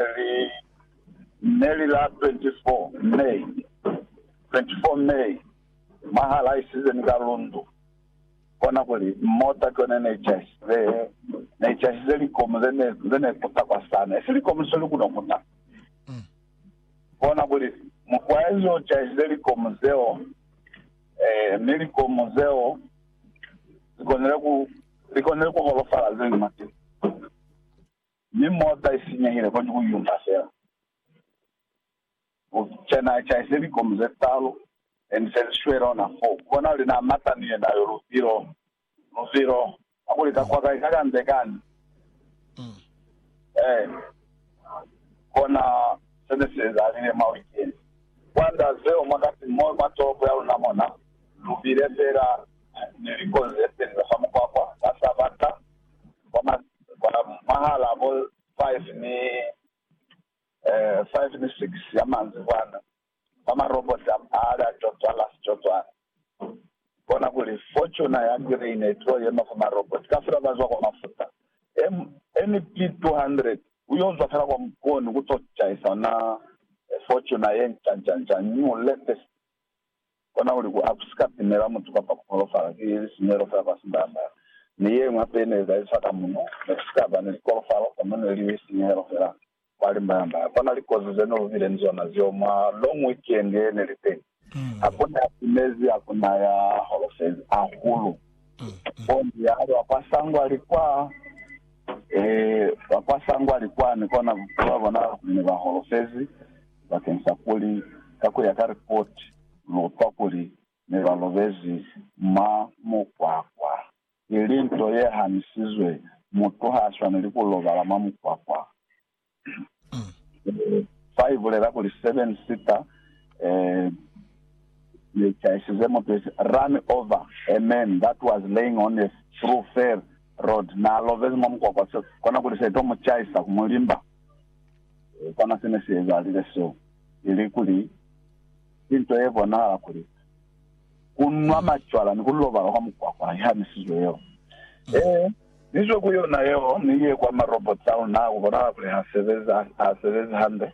Li ne li la 24 May, 24 May, mwaha la isizeni ka lundu, kona kuli, mota ki yone ne cahisize, ne cahisize likomu ze ne, ze ne kuta kwa sana. Esi likomu se lu kuno kuta. Kona kuli, mukwaezi o cahisize likomu zeo, eh, mi likomu zeo li konile ku, li konile ku holofala ze ñwi. Mi mota i sinyehile kwani ku yuna fela ku cana a caise likomu ze talu and se li shwele ona foo. Ku bona kuli na mata ni yena yo luvilo luvilo ha kuli ka kwa kai ka kande kani eh kona se ne si ezalile mwa wikendi. Kwanda zeo mwa kasi mo mwa tolopo ya luna mona lu bile fela ni likomu ze peli za fa mukwakwa ka sabata kwa mahal'a bo five ni, eh, five ni six ya manzibwana, kwa maroboti a mali a cozwala sicozwana. Bona kuli Fortuner ya green i tulo yema fa maroboti kafela ba zwa kwa mafuta. M, MP 200 u yo zwa fela kwa mukoni ku to caisa ona Fortuner ye nca-nca-nca, new, latest, Kona kuli ku si ka timela mutu kapa ku holofala ki lisinyehelo fela kwa sibaya-sibaya. Mi ye ñwi hape ne ezaliswa ka muno, ne ku si ka ba ni likolofalo, kono ne li lisinyehelo fela kwa limbaya-mbaya. Kona likozi ze ne lu bile ni zona zeo mwa long weekend ye ne li teñi, ha ku na ya timezi, ha ku na ya holofezi hahulu. Bongi ya ba kwa sangwali kwa, ee, ba kwa sangwali kwani, kona bupi ba bonala kuli ne ba holofezi. bakeng sa kuli ka ku ya ka ripoti lu utwa kuli ne ba lobezi mwa mukwakwa. I li nto ye hanisizwe, mutu ha swaneli ku lobala mwa mukwakwa. Fa i bulela kuli seven sita ye chaisize mutu isi run over a man that was laying on a through fair road, na lobezi mwa mukwakwa, se kona kuli se to mu chaisa ku mu limba. Kono sene si ezalile so, ili kuli, ki nto ye bonahala kuli ku nwa macwala ni ku lobala kwa mukwakwa i hanisizwe yeo. Ee, ni zwe ku yona yeo, ni ye kwa marobots a luna. Ku bonahala kuli ha sebezi, ha sebezi hande.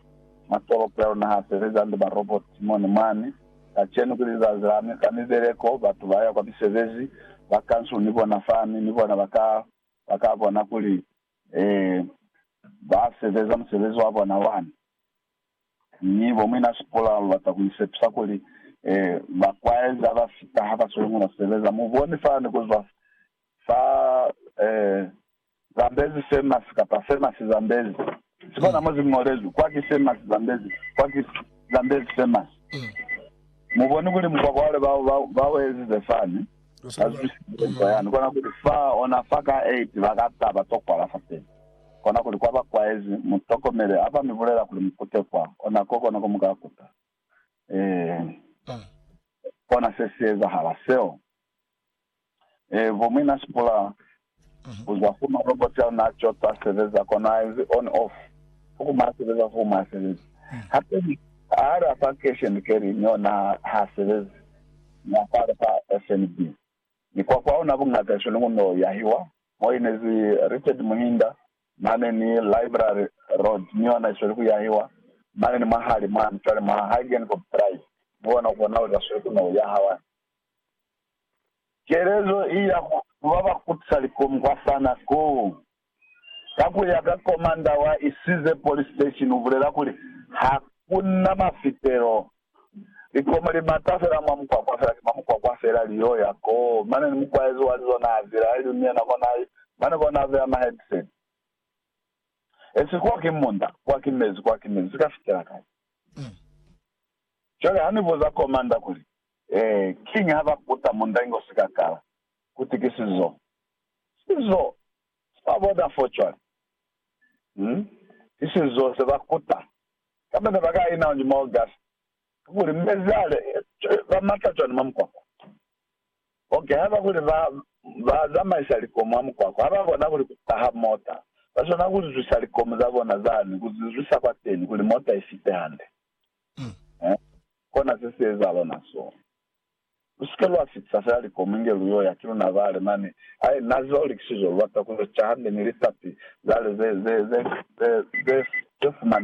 Matolopo ya luna ha sebezi hande, marobots mo ni mwani. Kacenu ki lizazi la mi, ka mibeleko, batu ba ya kwa misebezi, ba kansul ni bona fani, ni bona ba ka, ba ka bona kuli Ee, ba sebeza musebezi wa bona wa ni ni bo muina sikola. Lu bata ku mi sepisa kuli, ee, ba kwaeza ba fita ha ba sweli muna sebeza. Mu boni fani ku zwa fa ee, Zambezi famous kapa famous Zambezi. Si bona mo zi ñolezwi, kwa ki famous Zambezi, kwa ki Zambezi famous. Mu boni kuli mukwa kwale ba, ba, ba u ezize fani? Ka zusisezo ya ni kona kuli fa ona fa ka eti ba ka taba to kwala fa teni. Kona kuli kwa ba kwaezi, mu tokomele ha ba mi bulela kuli mu kute kwa ona ko kona ko mu ka kuta. Eehi. Kona se si ezahala seo. Eehi, bo muina Sipula Kuza kuma robot ya luna co ta sebeza kona a enzi on off fo kuma a sebeza fo kuma a sebezi hape ni ha li afa cash and carry ni ona ha sebezi ni afa li fa FNB ni kwa kwa ona bungata iso ni kuno yahiwa mo inezi Richard Muhinda mane ni library road ni ona isweli ku yahiwa mane ni mwahali mwani cwale mwa Hagen Cobb Drive ni ona kona uza sweli kuno yaha wani Kelezo i ya ku ba ba kutisa likomu kwa sana koo. Ka ku ya ka komanda wa Isize Police Station u bulela kuli, Ha ku na mafitelo. Likomu li mata fela mwa mukwakwa fela ki mwa mukwakwa fela li yo ya koo. Mane ni mukwaezi wa lizo naa zila, ili mi yena ko naa i, mane ko naa beya ma headset. Esi kwa ki munda, kwa ki mezi, kwa ki mezi. Si ka fitela kai. Cwale ha ni buza komanda kuli, Ee, kiñi ha ba kuta mundangi o si ka kala, kuti ki sizo, sizo sa bona fo cwale? Um, ki sizo se ba kuta. Kamba ne ba ka ina oñuma o gasi. Kakuli mezi ale, ba mata cwani mwa mukwakwa? Ok, haba kuli ba, ba zamaisa likomu mwa mukwakwa, ha ba kona kuli ku taha mota. Ba swanela ku lizwisa likomu za bona zani, ku zi zwisa kwateni, kuli mota i fite hande. He? Kona se si ezahala na so. Lu si ke lwa fitisa fela likomu inge lu yo ya ki luna bale mane. Ai, Na ziba luli ki sizo, lu bata ku yo ca hande ni litapi zale ze, ze, ze, ze, ze, ze fumaneha.